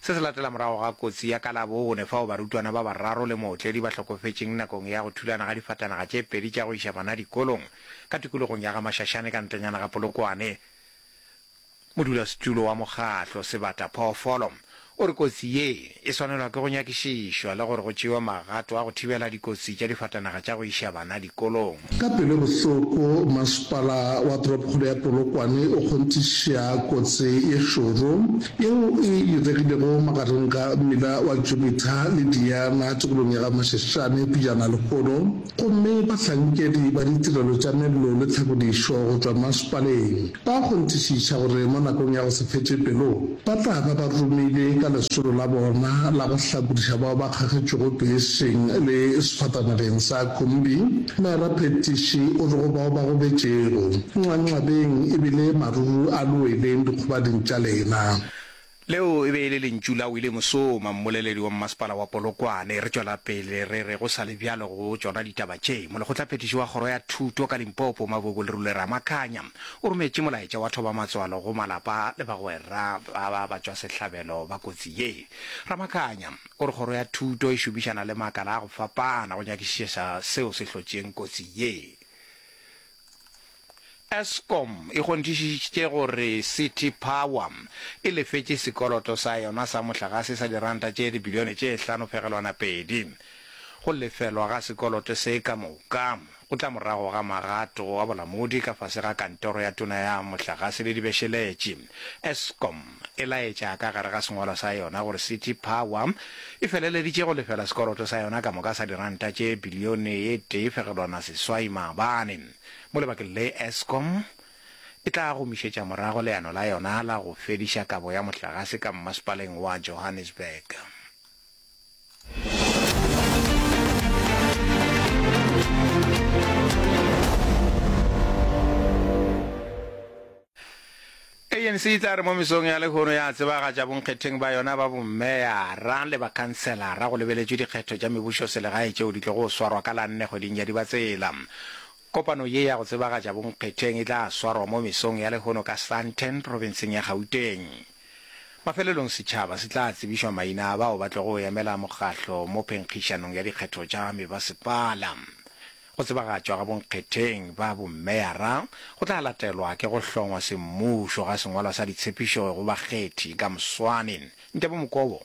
Se se latela morago ga kotsi ya ka Labone fao barutwana ba bararo le mootledi ba hlokofetšeng nakong ya go thulana ga difatanaga tše pedi tša go iša bana dikolong ka tikologong ya ga Mashashane ka ntlenyana ga Polokwane. Modulasetulo wa mokgatlo Sebata Phoofolo o re kotsi ye e swanelwa ke go nyakišišwa le gore go tšewe magato a go thibela dikotsi tša difatanaga tša go iša bana dikolong. Ka pelo e bohloko, masepala wa toropokgolo ya Polokwane o kgonthiša kotsi ye šoro yeo e iregilego magareng ga mmila wa Jupiter le Diana tikolong ya ga Mashashane pejana lehono gomme bahlankedi ba ditirelo tša mello le tlhakodišo go tšwa masepaleng ba kgonthišiša gore mo nakong ya go se fetše pelo Ba tla ba ba romile ka lesolo la bona la go hlakodiša bao ba kgagetšwego peeseng le sefatanageng sa khumbi. Mera Phetiši o re go bao ba gobetšego, Nxanxabeng e bile maruru a lo weleng dikgobading tša lena. Leo e be e le lentšu la Willie Musoma, mmoleledi wa Mmasepala wa Polokwane. Re tšwela pele re re go sa le bjalo go tšona ditaba tše, Molekgotlaphethiši wa Kgoro ya Thuto ka Limpopo, Mabuebue Lerule Ramakhanya, o rometše molaetša wa thobamatswalo go malapa le bagwera ba ba batšwasehlabelo ba kotsi ye. Ramakanya o re kgoro ya thuto e šomišana le makala a go fapana go nyakišiša seo se hlotšeng kotsi ye. Eskom e kgonthišišitše gore City Power e lefetše sekoloto sa yona sa mohlagase sa diranta tše dibilione tše hlano phegelwana pedi go lefelwa ga sekoloto se ka moka. Go tla morago ga magato a bolamodi ka fase ga Kantoro ya Tona ya Mohlagase le Dibešeletše, Eskom e laetša ka gare ga sengwalo sa yona gore City Power e feleleditše go lefela sekoloto sa yona ka moka sa diranta tše bilione ye tee fegelwana seswai maabane mo lebakeng le Eskom e tla gomišetša morago leano la yona la go fediša kabo ya mohlagase ka mmasepaleng wa Johannesburg. anc e tla re mo mesong ya lekgono ya tsebagatša bonkgetheng ba yona ba bommeyara le bakhanselara go lebeletšwe dikgetho tša mebušo selegae tšeo di tlogo swarwa ka la nne kgweding ya dibatsela kopano ye ya go tsebagatša bonkgetheng e tla swarwa mo mesong ya lekgono ka sandton provinseng ya gauteng Mafelelong setšhaba se tla tsebišwa maina a bao ba tlogo go emela mokgahlo mo phenkgišanong ya dikgetho tša mebasepala. Go tsebagatšwa ga bonkgetheng ba bomeyara go tla latelwa ke go hlongwa semmušo ga sengwalwa sa ditshepišo go bakgethi ka moswane. Ntebo Mokobo.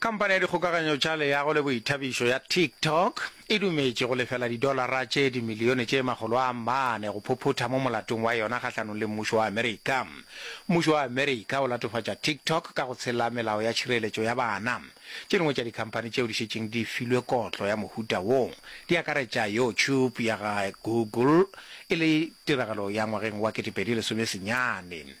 Khamphane ya dikgokaganyo tša leago le boithabišo ya TikTok e dumetše go lefela didolara tše dimilione tše makgolo a mane go phuphutha mo molatong wa yona kgahlanong le mmušo wa Amerika. Mmušo wa Amerika o latofatša TikTok ka go tshela melao ya tšhireletšo ya bana. Tše dingwe tša dikhamphane tšeo di šetšeng di filwe kotlo ya mohuta wo di akaretša YouTube ya ga Google e le tiragalo ya ngwageng wa 2010 senyane.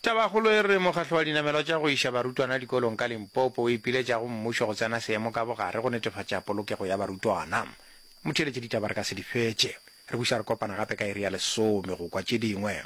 Tabakgolo e re mokgatlo wa dinamelwa tša go iša barutwana dikolong ka Limpopo o ipiletša go mmušo go tsena seemo ka bogare go netefatša polokego ya barutwana. Motheeletše ditaba re ka se di fetše. Re buša re kopana gape ka iri ya lesome go kwa tše dingwe.